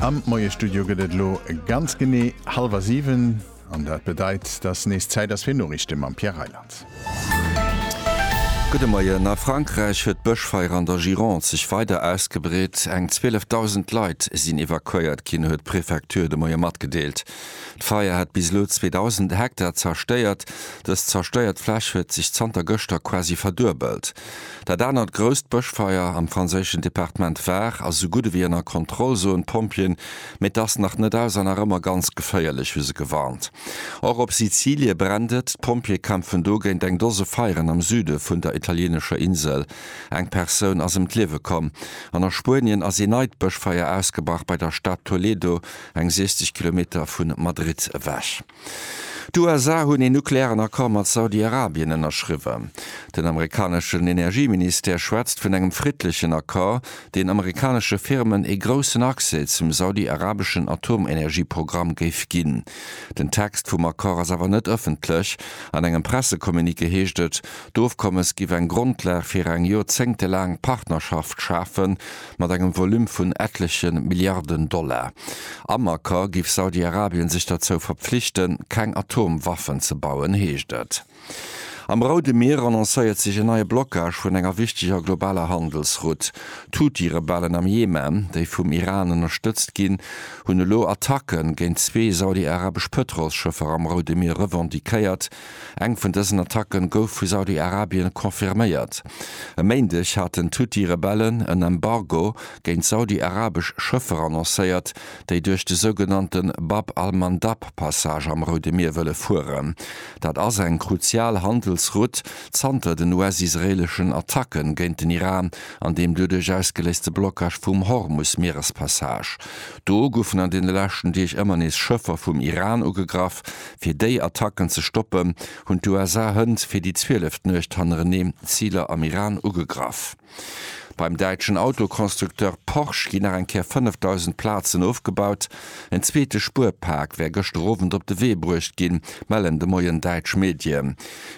Am Moie-Studio gëtt et elo ganz genee hallwer 7 an dat bedeit, dass nees Zäit ass fir Noriichte mam Pierre Reyland. Gudde Moien, A Frankräich huet d'Bëschfeier an der Gironde sech weider ausgebreet. Eng 12.000 Leit sinn evakuéiert ginn, huet d'Prefecture de Moie matgedeelt. D'Feier hätt bis elo 2.000 Hektar zerstéiert. Dës zerstéiert Fläch huet sech zanter gëschter quasi verduebelt. Dat anert grousst Bëschfeier am franséischen Departement Var ass esou gutt ewéi ënner Kontroll, soen d'Pompjeeën, mee et ass nach net aus a nach ëmmer ganz geféierlech, hu se gewarnt. Och op Sizilie brennt et. D'Pompjeeë kämpfen do géint eng Dose Feieren am Süde vun der italienescher Insel. Eng Persoun ass ëm d'Liewe komm. An a Spuenien ass ee neit Bëschfeier ausgebrach bei der Stad Toledo, eng 60 Kilometer vu Madrid ewech. D'USA hunn een nuklearen Accord mat Saudi-Arabien ënnerschriwwen. Den amerikaneschen Energieministère schwätzt vun engem friddlechen Accord, deen amerikanesche Firmen ee groussen Accès zum saudi-arabeschen Atomenergieprogramm géif ginn. Den Text vum Accord ass awer net ëffentlech. An engem Pressecommuniqué heescht et, d'Ofkommes giff eng Grondlag fir eng joerzéngtelaang Partnerschaft schafen, mat engem Volume vun etleche Milliarden Dollar. Am Accord giff Saudi-Arabien sech derzou verpflichten, keng Atomwaffen ze bauen, heescht et. Am Roude Mier annoncéiert sech en neie Blockage vun enger wichteger globaler Handelsroute. D'Huthi-Rebellen am Jemen, déi vum Iran ënnerstëtzt ginn, hunn elo Attacke géint zwee saudi-arabesch Pëtrolsschëffer am Roude Mier revendiquéiert, Eng vun dësen Attacke gouf vu Saudi-Arabien confirméiert. E Méindeg haten d'Huthi-Rebellen en Embargo géint saudi-arabesch Schëffer annoncéiert, déi duerch de sougenannte Bab al-Mandab-Passage am Roude Mier wëlle fueren. Dat ass eng kruzial Handelsroute zanter den US-israeeleschen Attacke géint den Iran an deem doduerch ausgeléiste Blockage vum Hormus-Mierespassage. Do goufen an deene leschten Deeg ëmmer nees Schëffer vum Iran ugegraff, Fir déi Attacken ze stoppen, hunn d'USA hënt fir déi zwieleft Nuecht hannereneen Ziler am Iran ugegraff. Beim däitschen Autoconstructeur Porsche ginn nach eng Kéier 5.000 Plazen ofgebaut. En zweete Spuerpak wär gëschter Owend op de Wee bruecht ginn, mellen de Moien däitsch Medien.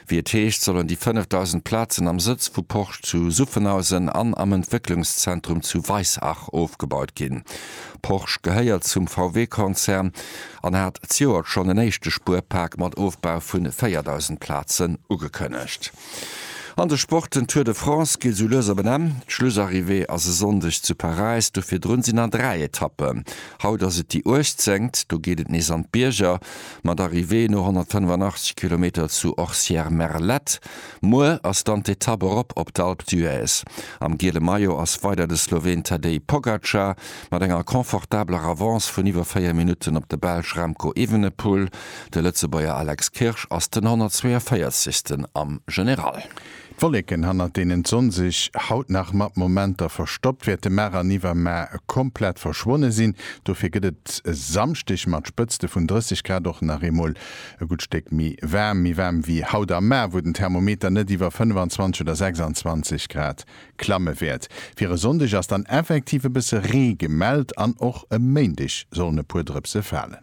Wéi et heescht, sollen déi 5.000 Plazen am Sëtz vu Porsche zu Suffenhausen an am Entwécklungszentrum zu Weissach ofgebaut ginn. Porsche gehéiert zum VW-Konzern. an hat d'Joert schonn en éischte Spuerpak mat Ofbau vu 4.000 Plazen ugekënnegt. An de Sporten, Tour de France geet esou lues op en Enn. D'Schlussarrivée ass e Sonndeg zu Paräis, do virdrun sinn der dräi Etappen. Haut ass et déi uechtzéngt, do geet et nees an d'Bierger, mat Arrivée no 185 Kilometer zu Orcières-Merlette. Muer ass dann d'Etapp erop op d'Alpe d'Huez. Am giele Maillot ass weider de Sloween Tadej Pogacar. mat enger confortabeler Avance vun iwwer 4 Minutten op de Belsch Remco Evenepoel. De Lëtzebuerger Alex Kirsch ass den 142. am General. D'Wolleken, hannert deenen d'Sonn sech haut nach mat Momenter verstoppt, wäerte mar an iwwermar komplett verschwonne sinn. Dofir gëtt et e Samschdeg mat Spëtzte vun 30 Grad och nach eemol e gutt Stéck méi waarm. Méi waarm wéi haut am Mar, wou den Thermometer net iwwer 25 oder 26 Grad Klamme wäert. Fir e Sonndeg ass dann effektiv e bësse Ree gemellt an och e Méindeg sollen e puer Drëpse falen.